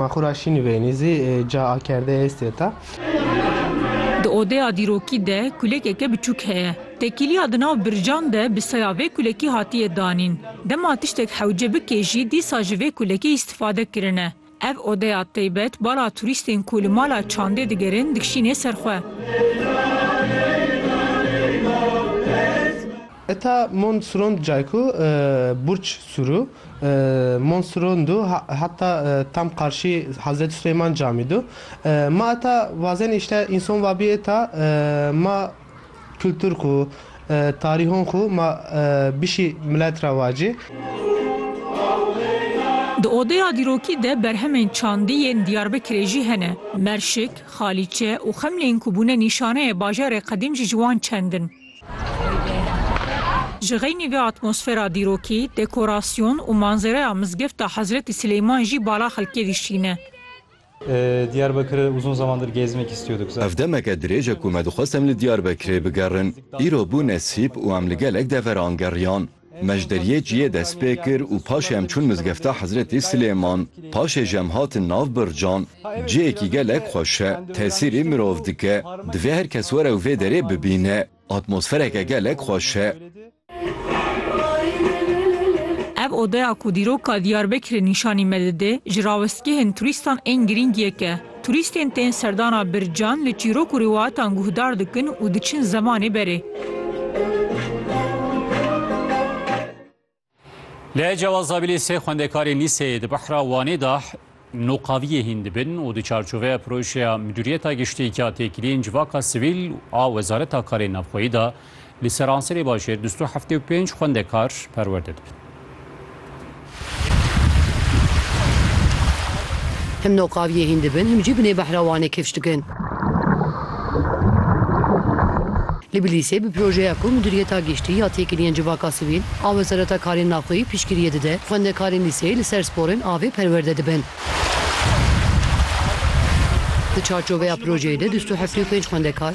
Ma xwe ra şînî veynî zî ca akerdeyê hêstê ta. Di odeya dîrokî de kulekeke biçûk heye. Tekîliya di nav bircan de bi saya vê kulekî hatiye danîn. Dema tiştek hewce bike jî dîsa ji vê kulekê îstîfade kirine. Ev odeya teybet bala turîstên ku li mala çandê digerin dikşînê ser xwe. Eta Mont Surond Cayku Burç Suru Mont Surondu heta tam qarşî Hazreti Süleyman Camidu. Ma eta vazenê îşte înson vabî eta ma kultur xu, tarîhon xu ma bişî milet ra vacî. Di odeya dîrokî de berhemên çandî yên Diyarbekirê jî hene. Merşik, Xalîçe û Xemlên ku bûne nîşaneyê bajarê qedîm jî ji wan çend in. Ji xeynî vê atmosfera dîrokî, dekorasyon û manzereya Mizgefta Hezretî Sileyman jî bala xelkê dişîne. Ev demeke dirêj e ku me dixwest em li Diyarbekirê bigerin. Îro bû nesîb û em li gelek deveran geriyan. Me ji deriyê çiyê dest pê kir û paşê em çûn mizgefta Hezretî Silêman. Paşê jî em hatin nav Bircan. Cihêkî gelek xweş e. Tesîrî mirov dike. Divê her kes were û vê derê bibîne. Atmosfereke gelek xweş e. Ev odeya ku dîroka Diyarbekirê nîşanî me dide, ji rawestgehên turîstan ên girîng yek e. Turîstên tên serdana Bircan li çîrok û rîwayatan guhdar dikin û diçin zemanê berê. Li Cewazabilê sê xwendekarên lîseyê di Behra Wanê de noqaviyê hîn dibin û di çarçoveya projeya Midûriyeta Giştî ya Têkiliyên Civaka Sivîl a Wezareta Karên Navxweyî de Li seranserê bajêr du sed û heftê û pênc xwendekar perwerde dibin. Him no qaviyê hîn dibin, him jî binê behra Wanê kifş dikin. Li Bilîsê bi projeya ku Miduriyeta Giştî ya Têkiliyên Civaka Sivîl a Wezareta Karên Naxweyî piştgiriyê dide, xwendekarên lîseyê li ser sporên avê perwerde dibin. Di çarçoveya projeyê de du sed û heftê û pênc xwendekar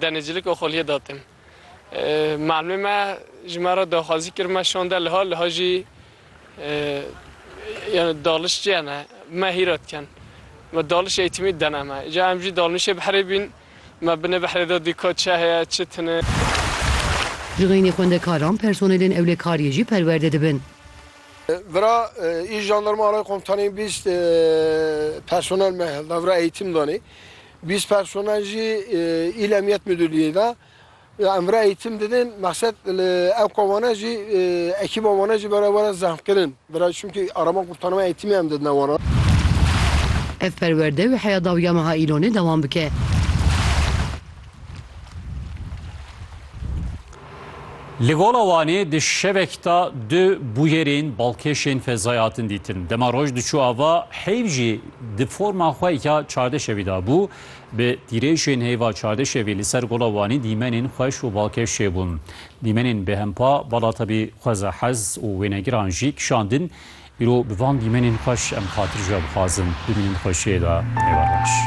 Denizcilik Oxoliyê datin. Malimê me ji me re daxwazî kir me şande liha, liha jî yani dalış çiye ne me hîra dikin. Me dalış eğitimî dene me. Ca em jî dalnişê behrê bîn me binê behrê de dîka çi heye çi tune. Ji xeynî xwendekaran, personelên ewlekariyê jî perwerde dibin. Vira îş jandarma alay komutanî bîst personel me li vira eğitim danê. Bîst personel jî îl Emniyet Mudurliyê de emre eğitim didin. Mexset li ev komane jî ekîba wan e jî bera were zehmkirin. Bera çimkî arama qurtarma eğitimê em didine wan. Ev perwerde wê heya dawiya meha Îlonê dewam bike. Li Gola Wanê di şevek da du bûyerên balkêşên fezayê hatin dîtin. Dema roj diçû ava heyv jî di forma xwe ya çardeşevî da bû. Bi tîrêjên heyva çardeşevî li ser Gola Wanê dîmenên xweş û balkêş çêbûn. Dîmenên bêhempa bala tevî xweza hez û wênegiran jî kişandin. Îro bi van dîmenên xweş em xatir ji we bixwazin. Bimînin xweşiyê de. Nêwereş.